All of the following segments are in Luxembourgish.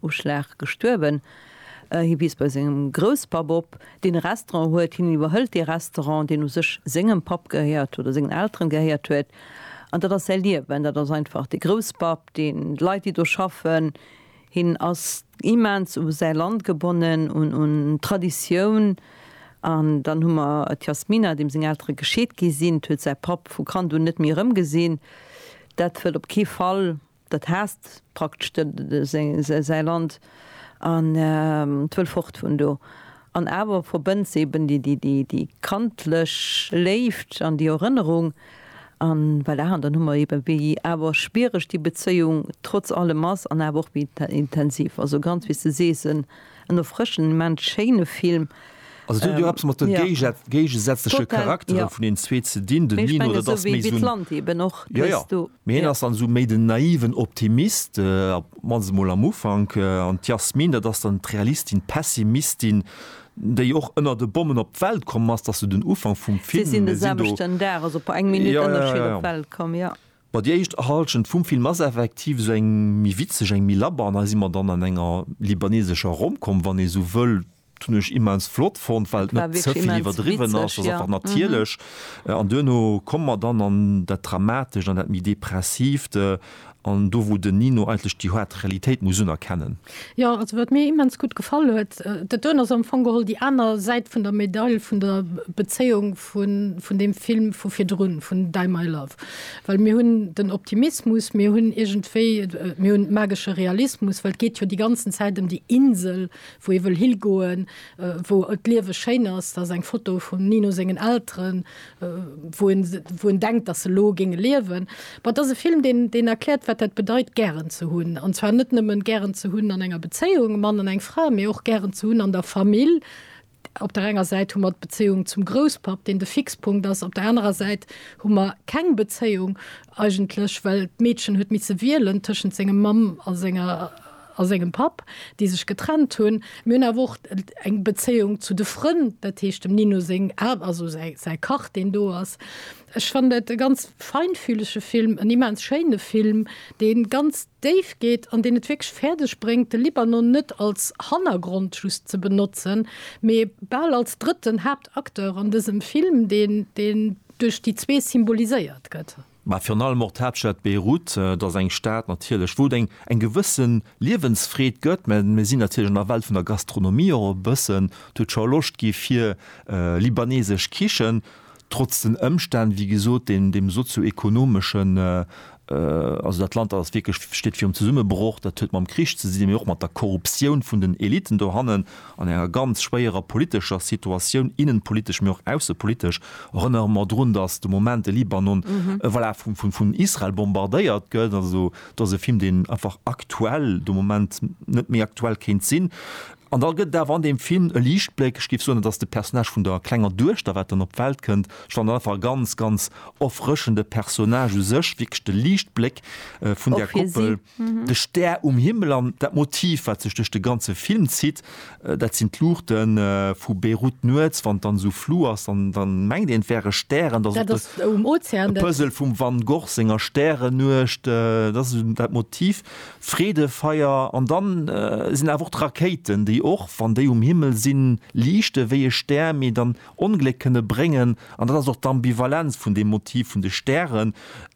Uschlag gestuerwen. Hie wiisst bei sengem Grousspapp op, deen e Restaurant huet. Hien iwwerhëlt dee Restaurant, deen u sech sengem Papp gehéiert huet, oder sengen Elteren gehéiert huet. An dat ass säi Liewen. Dat ass einfach de Grousspapp, deen, d'Leit, déi do schaffen. Hien ass immens u säi Land gebonnen, un d'Traditioun. An dann hu mer d'Yasmina, deem seng Eltere gescheet gi sinn. D'huet säi Papp vu Kand un net méi erëmgesinn. Dat wëll op kee Fall Dat haasst praktesch säi Land an wëll fort vun do. An awer verbënnt se eben déi kandlech Léift an déi Erënnerung. An voilà, an dann hu mer eben, wéi awer schwiereg déi Bezéiung trotz allem ass an awer och wéi intensiv. Also ganz, wéi s de sees, en En erfrëschend, immens schéine Film. Also et huet jo eppes mat de géigesätzleche Charaktere vun den zwee ze dinn, den Nino dat ass méi esou en, jo jo, mee hien ass dann esou méi den naiven Optimist, mannst emol am Ufank, an d'Yasmine dat ass dann d'Realistin, d'Pessimistin, déi och ënner de Bommen op d'Welt komm ass, dat ass esou den Ufank vum Film. Si sinn de selwechten Dag, also eng Minutt ënnerschied, op d'Welt komm, jo. Bon, déi éischt Halschent vum Film ass effektiv esou eng méi witzeg, eng méi labber an hei si mer dann an enger libanesescher Rom-Com, wann ee esou wëll. Dat hunn ech immens flott fonnt, well et net ze vill iwwerdriwwen ass, ass einfach natierlech. An duerno komme mer dann an dat Dramatescht, an dat méi Depressiivt, an do wou den Nino eigentlech déi haart Realitéit muss unerkennen. Jo, also wat mir immens gutt gefall huet, dat doen ass am Fong geholl déi aner Säit vun der Medail vun der Bezéiung, vun deem Film vu virdrun, vun Die My Love. Well mir hunn den Optimismus, mir hunn iergendwéi, mir hunn magesche Realismus, well et geet jo déi ganzen Zäit ëm déi Insel, wou ee wëll higoen, wou d'Liewe schéin ass. Dat ass eng Foto vum Nino sengen Elteren, wou en, wou en denkt, datt se elo géinge liewen. Bon, et ass e Film, deen, deen erkläert, wat dat bedeit, gären ze hunn. An zwar net nëmmen gären ze hunn an enger Bezéiung, e Mann an eng Fra, mee och gären ze hunn an der Famill, Op der enger Säit hu mer d'Bezéiung zum Grousspapp, deen de Fixpunkt ass, op der anerer Säit hu mer keng Bezéiung eigentlech, well d'Meedchen huet misse wielen tëschent senger Mamm a senger a sengem Papp, déi sech getrennt hunn. Mir hunn awer och eng Bezéiung zu de Frënn, dat heescht dem Nino seng, also säi Kach, deen do ass. Ech fannen et e ganz feinfühlege Film, en immens schéine Film, dee ganz déif geet an deen et wierklech fäerdeg bréngt, de Libanon net als Hannergrond just ze benotzen, mee bal als drëtten Haaptacteur an dësem Film, deen duerch déi zwee symboliséiert gëtt. Mä virun allem och d'Haaptstad Beirut, et ass eng Stad natierlech, wou et eng eng gewësse Liewensfreed gëtt. Mä mir sinn natierlech an der Welt vun der Gastronomie och e bëssen. D'huet scho Loscht gi fir libanesesch Kichen. trotz den Ëmstänn, wéi gesot, deem, deem sozio-ekonomeschen, also dat Land ass wierklech, steet virum Zesummebroch, dat huet mam Krich ze sinn, mee och mat der Korruptioun vun den Eliten dohannen, an enger ganz schwéierer politescher Situatioun, innenpolitesch, mee och aussepolitesch. Erënnere mer drun, datt de Moment de Libanon, voilà, vum, vum, vun Israel bombardéiert gëtt. Also do ass e Film, deen einfach aktuell, de Moment net méi aktuell kéint sinn. An da gëtt et awer an deem Film e Liichtbléck, ech géif soen, et ass de Personnage vun der klenger Duechter, wat dann op d'Welt kënnt. Ech fannen dat einfach e ganz, ganz erfrëschende Personnage u sech, wierklech de Liichtbléck vun där Koppel, de Stär um Himmel. An dat Motiv, wat sech duerch de ganze Film zitt, dat sinn d'Luuchte vu Beirut nuets, wann et dann esou flu ass, da mengt een, et wäre Stären. Dat ass e Puzzle vum Van Gogh senger Stärennuecht. Dat ass dat Motiv, Freedefeier an dann sinn awer och d'Rakéiten, déi och wann déi um Himmel sinn, liichte wéi e Stär, mee dann Ongléck kënne bréngen. An dat ass och d'Ambivalenz vun deem Motiv vun de Stären.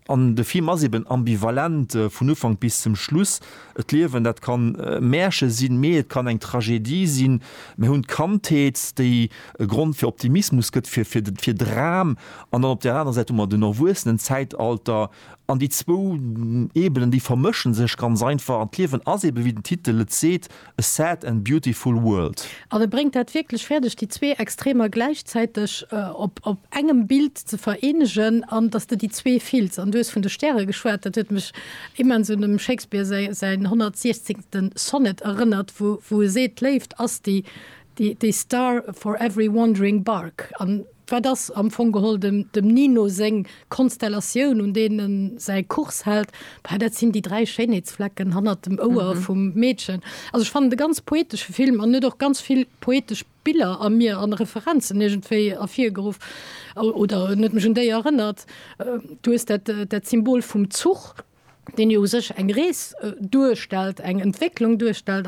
An de Film ass eben ambivalent vun Ufank bis zum Schluss. D'Liewen, dat kann e Märche sinn, mee et kann eng Tragedie sinn. Mir hunn d'Kandheet, déi e Grond fir Optimismus gëtt, fir Dram. An dann op där anerer Säit hu mer den Erwuessenenzäitalter. An déi zwou Ebenen, déi vermësche sech ganz einfach. An d'Liewen ass eebe, wéi den Titel et seet, a sad and beautiful world. An e bréngt dat wierklech fäerdeg, déi zwee Extremer gläichzäiteg op engem Bild ze vereenegen an datt s de déi zwee fills. An du hues vun de Stäre geschwat, dat huet mech immens un dem Shakespeare säin 116. Sonnet erënnert, wou e seet, d'Léift ass déi star for every wandering bark. Wat ass am Fong geholl dem Nino seng Konstellatioun, un deen en säi Kurs hält? Bah, dat sinn déi dräi Schéinheetsflecken hannert dem Ouer vum Meedchen. Also ech fannen et e ganz poetesche Film an huet och ganz vill poetesch Biller a mir an Referenzen iergendwéi ervirgeruff oder en huet mech un déi erënnert. Du hues dat dat Symbol vum Zuch, deen jo u sech eng Rees duerstellt, eng Entwécklung duerstellt.